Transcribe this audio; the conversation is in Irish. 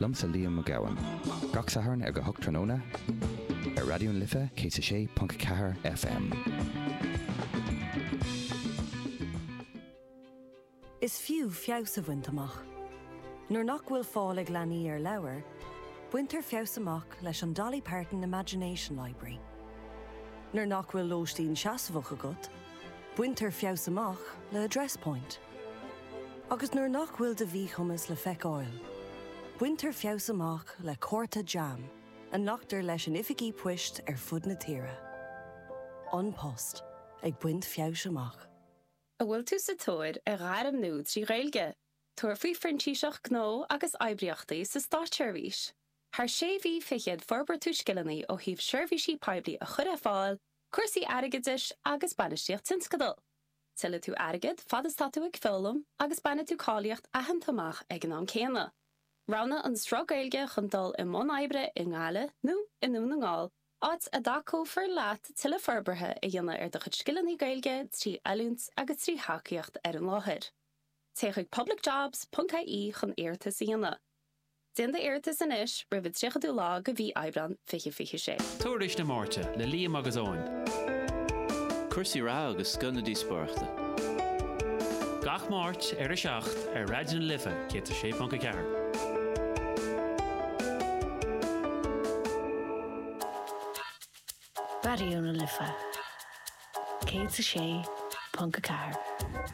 Liomsa Niamh Ní Ghabhann. Gach Satharn ag a hocht tráthnóna ar Raidió na Life 106.4 FM. Is fiú feabhas a bhaint amach. Nuair nach bhfuil fáil ag leanaí ar leabhair, baintear feabhas amach leis an Dolly Parton Imagination Library. Nuair nach bhfuil lóistín seasmhach agat, baintear feabhas amach le Address Point. Agus nuair nach bhfuil do mhíchumas le feiceáil, baintear feabhas amach le cárta jam a nglactar leis in oifigí poist ar fud na tíre. An Post ag baint feabhais amach. An bhfuil tú sa tóir ar ghairm nua trí Ghaeilge? Tabhair faoi Phrintíseacht Gnó agus Oibríochtaí sa Státseirbhís. Thar sé mhí fichead forbróidh tú scileanna ó thaobh seirbhísí poiblí a chur ar fáil, cúrsaí airgeadais agus bainistíocht tionscadal. Tuillfidh tú airgead fad is tá tú ag foghlaim agus bainfidh tú cáilíocht aitheanta amach ag an am céanna. Roghnaigh an sruth Gaeilge chun dul i mbun oibre i nGaillimh nó i nDún na nGall, áit a dtacófar leat tuilleadh forbartha a dhéanamh ar do chuid scileanna Gaeilge trí oiliúint agus trí thacaíocht ar an láthair. Téigh chuig publicjobs.ie chun iarratas a dhéanamh. Déan d'iarratas anois roimh an 30ú lá de mhí Aibreán 2026. Tuairisc na Máirte le Liam agus Eoin. Cúrsaí reatha agus scoth na díospóireachta. Gach Máirt ar a 7 ar Raidió na Life 106.4. Raidió na Life 106.4.